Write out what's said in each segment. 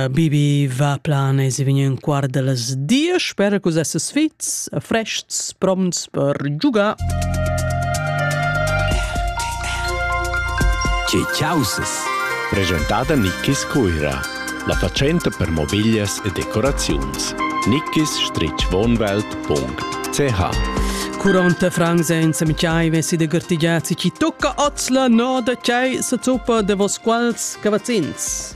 Bibi va plan e si vegn ün quart da las diesch. Spera che vus esses fits, frests, prompts per giugar. Che chausas! Presentada Nickis Cuira, la fatschenta per mobiglias e decoraziuns. nickis-wohnwelt.ch Curante Frank senza Michai vessi de gartigiazzi ci tocca oz la noda chai sa zuppa de vos quals cavazzins.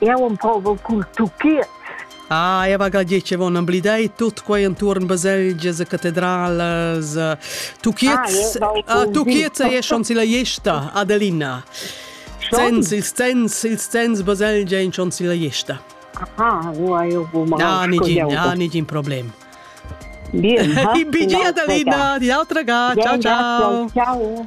Eu am povel cul tuchiet. Ah, e vaga dir che von amblidei tut quei entuorn baselgia, za catedralas. Tuchiets, ah, tuchiets e schon silla Iesta, Adelina. Sens, il sens, il sens baselgia in schon silla Iesta. Ah, io io bu Ah, nigin, ah, nigin problem. Bien. Bigi Adelina, di altra ga. Ciao, ciao. Ciao.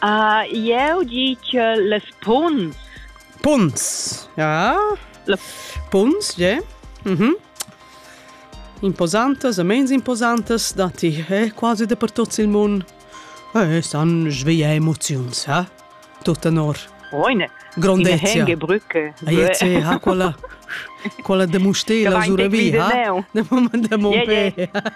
Ah, jeu gi che las punts. Punts. Ja. La punts, je. Mhm. Imposantas, amens imposantas da ti, eh, quasi dappertut il mund. Eh, stan sveglia emoziuns, eh? Tutta nor. Oine. Grondezia. In henge brücke. Aietze, ha quella quella de mustela sura vi, ha? De mo pe.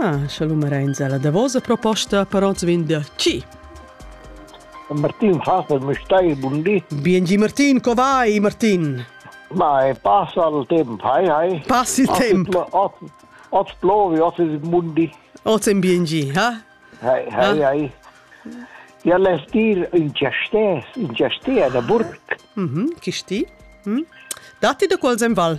Ah, scha lu marenza la davosa proposta, per ons vegn da chi? Martin Faber mi stai bun di. Biengi Martin, co vai Martin? Ma e passa il tempo, hai hai. Passi il tempo. Oz plovi, oz è mundi. Oz è biengi, ha? Hai, hai, hai. Ja lässt dir in Chastes, in Chastea da Burg. Mhm, chi sti? Hm? Datti da quals en val?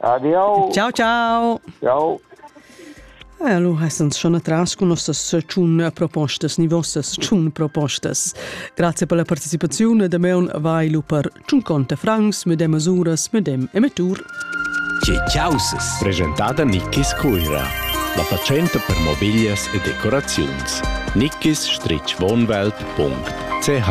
Adieu. Ciao, ciao. Ciao. E allora essens schon atras con nossas tschun propostas, ni vossas tschun propostas. Grazie per la partecipazione da meun vai lu per tschun conte francs, medem masuras, medem emettur. Ce ciausas. Presentada Nickis Cuira. La fatschenta per mobiglias e decoraziuns. Nickis-wohnwelt.ch